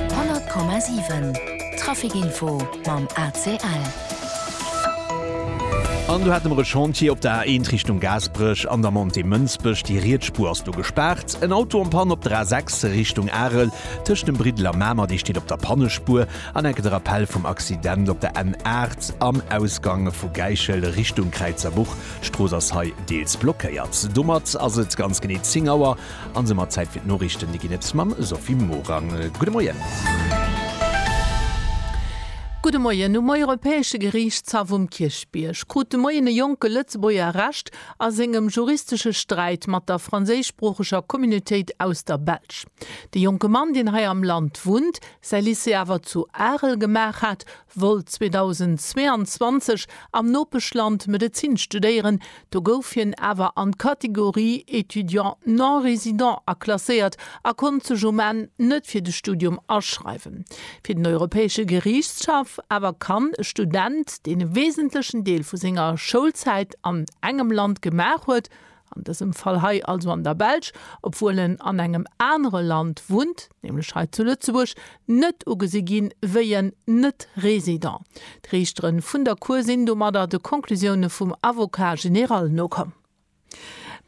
100,7 Traficinfo mam ACL. An do hate mer e Chantier op der A1 Richtung Gaasperech an der Montée Mënsbech. Déi riets Spuer ass do gespaart. En Auto am Panne op der A6 Richtung Arel tëscht dem Briddel a Mamer. Dee steet op der Pannespuer. An enke de Rappell vum Accident op der N8 am Ausgang vu Gäichel Richtung Kräizerbuch. D'Strooss ass hei deels blockéiert. Domat ass et ganz genee 10 Auer. An se mat Zäit fir d'Noriichten, déi ginn et mam Sophie Morang. Gudde Moien. Gudde Moien. Um Europäesche Geriichtshaff um Kierchbierg krut de Moien e jonke Lëtzebuerger Recht a sengem juristesche Sträit mat der franséischsproocheger Communautéit aus der Belsch. De jonke Mann, deen hei am Land wunnt, säi Lycée awer zu Arel gemaach hat, wollt 2022 am Nopeschland Medezin studéieren, do gouf hien awer an d'Kategorie étudiant non résident aklasséiert a konnt sech um Enn net fir de Studium aschreiwen. Fir den Europäesche Geriichtshaff awer kann e Student, deen e wesentlechen Deel vu senger Schoulzäit an engem Land gemaach huet, an dësem Fall hei also an der Belsch, obwuel en an engem anere Land wunnt, nämlech hei zu Lëtzebuerg, net ugesi ginn wéi en Net-Resident. D'Riichtere vun der Cour sinn domadder de Conclusioune vum Avocat général nokomm.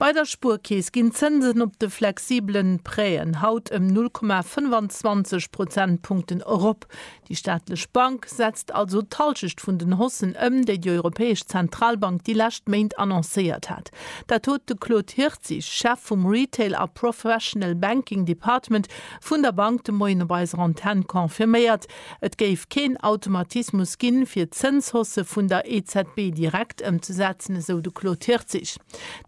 Bei der Spuerkeess ginn d'Zënsen op de flexibelen Prêten haut ëm 0,25 Prozentpunkten erop. Déi staatlech Bank setzt also d'Halschecht vun den Haussen ëm, déi déi Europäesch Zentralbank déi lescht Méint annoncéiert hat. Dat huet de Claude Hirtzig, Chef vum Retail a Professional Banking Department vun der Bank de Moien op eiser Antenn confirméiert. Et géif keen Automatismus ginn, fir d'Zënshausse vun der EZB direkt ëmzesetzen, esou de Claude Hirtzig.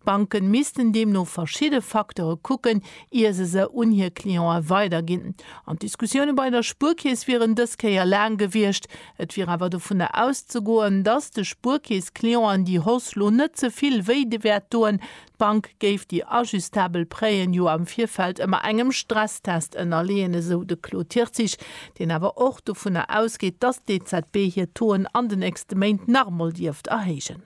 D'Banke missten deemno verschidde Facteure kucken, ier se se un hir Clientë weiderginn. An d'Diskussioune bei der Spuerkeess wieren dës Kéier laang gewiescht. Et wier awer dovunner auszegoen, datt de Spuerkeess-Clienten déi Hoss lo net ze vill wéi de wäert doen. D'Bank géif déi ajustabel Prêt'en jo am Virfeld ëmmer engem Stresstest ënnerleeën, esou de Claude Tirtzig, deen awer och dovunner ausgeet, datt d'EZB hir Touen an de nächste Méint nach emol dierft erhéijen.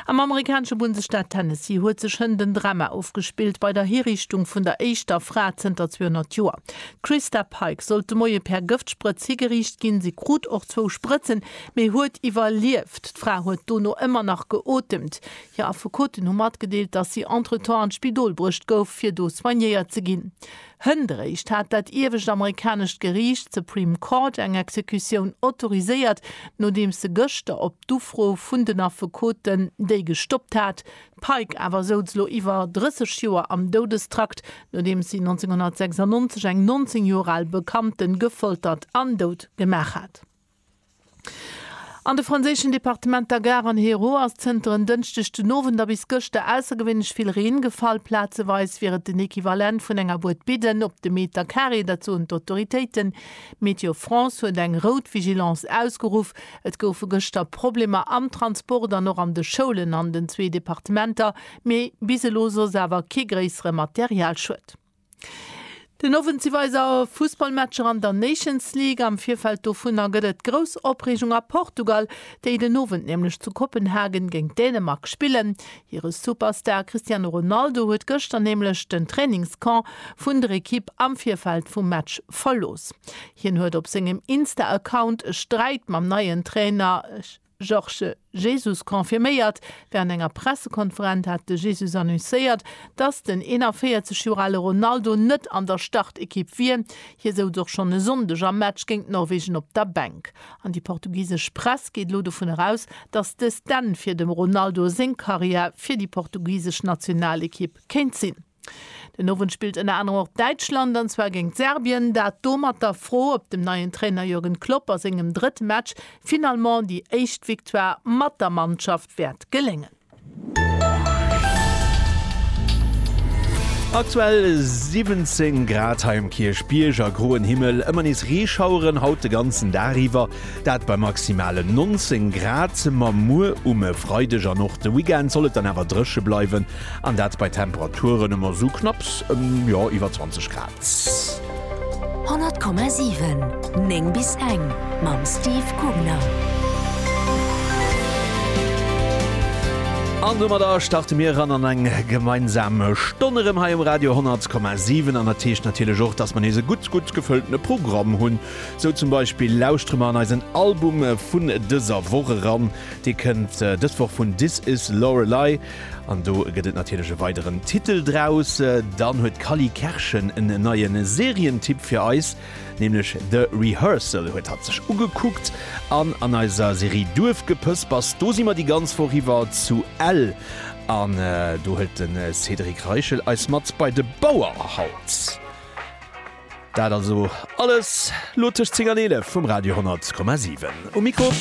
Am amerikanesche Bundesstaat Tennessee huet sech hënt en Drama ofgespillt bei der Hiriichtung vun der éischter Fra zënter 200 Joer. D'Christa Pike sollt de Moie per Gëftsprëtz higeriicht ginn. Si krut och zwou Sprëtzen, mee huet iwwerlieft. D'Fra huet dono ëmmer nach geotemt. Hir Affekoten hu matgedeelt, datt si entretemps an d'Spidol bruecht gouf, fir do soignéiert ze ginn. Hëndréischt hat dat iewescht amerikanescht Geriicht, d'Supreme Court, eng Exekutioun autoriséiert, nodeems se gëschter op d'Ufro vun den Affekoten déi gestoppt hat. D'Pike awer souz lo iwwer 30 Joer am Doudestrakt, nodeems si 1996 eng 19 Joer al Bekannte gefoltert an dout gemaach hat. An de franséischen Departementer Gard an Hérault ass zënter en Dënschdeg den Owend a bis gëschter aussergewéinlech vill Reen gefall. Plazeweis wier et den Equivalent vun enger Bued Bidden op de Meter Carré, dat soen d'Autoritéiten. Météo France huet eng rout Vigilance ausgeruff. Et goufe gëschter Problemer am Transport an och an de Schoulen an den zwee Departementer, mee bis elo soss awer kee gréissere Materialschued. Den Owend si weider Fussballmatcher an der Nations League. Am Virfeld dovunner gëtt et grouss Opreegung a Portugal, déi den Owend nämlech zu Kopenhagen géint Dänemark spillen. Hire Superstar Cristiano Ronaldo huet gëschter nämlech den Trainingscamp vun der Ekipp am Virfeld vum Match verlooss. Hien huet op sengem Insta-Account e Sträit mam neien Trainer Georges Jesus confirméiert. Wärend enger Pressekonferent hat de Jesus annoncéiert, dass den 41 Joer ale Ronaldo net an der Startekipp wier. Hie souz och schonn e Sonndeg am Match géint Norwegen op der Bänk. An déi portugisesch Press geet elo dovun eraus, dass dëst d'Enn fir dem Ronaldo seng Karriär fir déi portugisesch Nationalekipp kéint sinn. Den Owend spillt ënner anerem och Däitschland, an zwar géingt Serbien. Dat do mat der Fro, ob dem neien Trainer Jürgen Klopp a sengem drëtt Match finalement déi éischt Victoire mat der Mannschaft wäert geléngen. Aktuell 17 Grad hei um Kierchbierg a groen Himmel, ëmmer nees Reeschaueren haut de ganzen Dag iwwer, dat bei maximalen 19 Grad. Ma muer um Freideg an och de Weekend soll et dann awer dréche bleiwen. An dat bei Temperaturen ëmmer esou knapps jo iwwer 20 Grad. 100,7 9 bis eng mam Steve Gubner. An domadder starte mir eran an eng gemeinsam Stonn erëm hei um Radio 10,7. An dat heescht natierlech och, dass mer nees e gutt, gutt gefëlltene Programm hunn. Sou zum Beispill lauschtere mer an eisen Album vun dëser Woch eran. Dee kënnt dës Woch vun This Is Lorelei. An do gëtt et natierlech e weideren Titel draus. Dann huet d'Cally Kerschen en neie Serientipp fir eis, nämlech The Rehearsal huet hatt sech ugekuckt. An an eiser Serie Duerfgepëspers, do si mer déi ganz Woch iwwer zu Ell an do hëlt de Cédric Reichel eis mat bei de Bauerhaus. Dat also alles elo tëscht 10 an 11 um Radio 10,7. Um Mikro.